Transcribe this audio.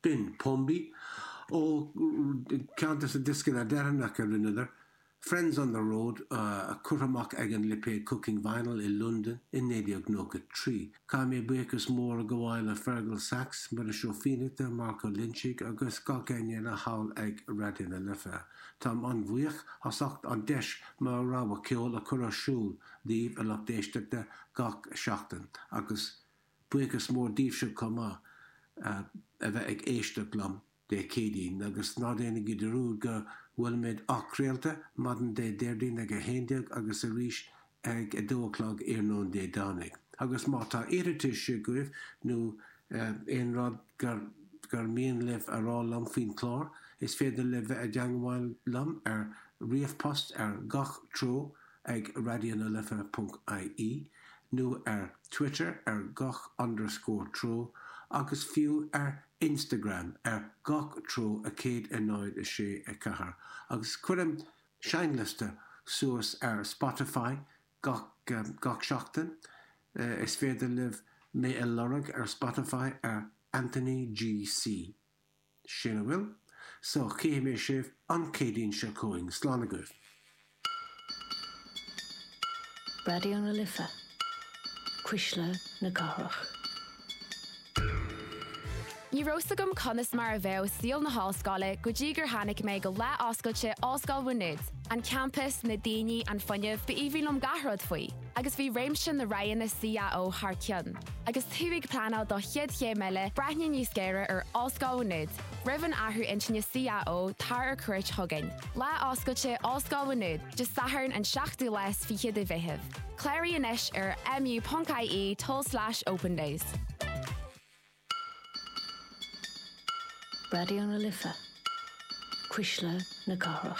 B'in Pombi ó ceann des na dioscanna deireanacha a rinneadar, Friends on the Road, curtha amach ag an lipéad Cooking Vinyl i Londain i 1993. Caithfidh mé buíochas mór a ghabháil le Fearghal Saxe, Muiris Ó Fiannachta, Marc Ó Loinsigh agus gach éinne eile thall ag Raidió na Life. Táim an-bhuíoch as ucht an deis mo rogha ceoil a chur ar siúl daoibh a lucht éisteachta gach seachtain agus Buíochas mór daoibhse chomh maith as a bheith ag éisteacht liom Dé Céadaoin, agus ná déanaigí dearúd go bhfuilimid athchraolta maidin Dé Déardaoin ag 11 agus arís ag 2 a chlog iarnóin Dé Domhnaigh. Agus má tá iarratais agaibh nó aon rud gur mian libh a rá liom faoin chlár, is féidir libh bheith i dteagmháil liom ar ríomhphost ar gach treo, ag raidionalife.ie nó ar Twitter ar gach underscore treo agus fiú ar Instagram ar gach treo a 1064 agus cuirim seinnliosta suas ar Spotify gach gach seachtain Is féidir libh mé a lorg ar Spotify ar Anthony GC. Sin a bhfuil, so chífidh mé sibh an Céadaoin seo chugainn. Slán agaibh. Raidió na Life, cuisle na cathrach. Ní raibh 's agam conas mar a bheadh saol na hollscoile go dtí gur tháinig mé go lá oscailte Ollscoil Mhá Nuad, an campas, na daoine, an fuinneamh, ba aoibhinn liom gach rud faoi. agus bhí réimse na roghanna CAO thar cionn. Agus tú ag pleanáil do chéad chéim eile, breathnaigh níos géire ar Ollscoil Mhá Nuad. Roimh an athrú intinne CAO, tar ar cuairt chugainn. Lá Oscailte Ollscoil Mhá Nuad, Dé Sathairn an 7ú lá is fiche de Mheitheamh. Cláraigh anois ar mu.ie tulslais opendays. Raidió na Life, Cuisle na Cathrach.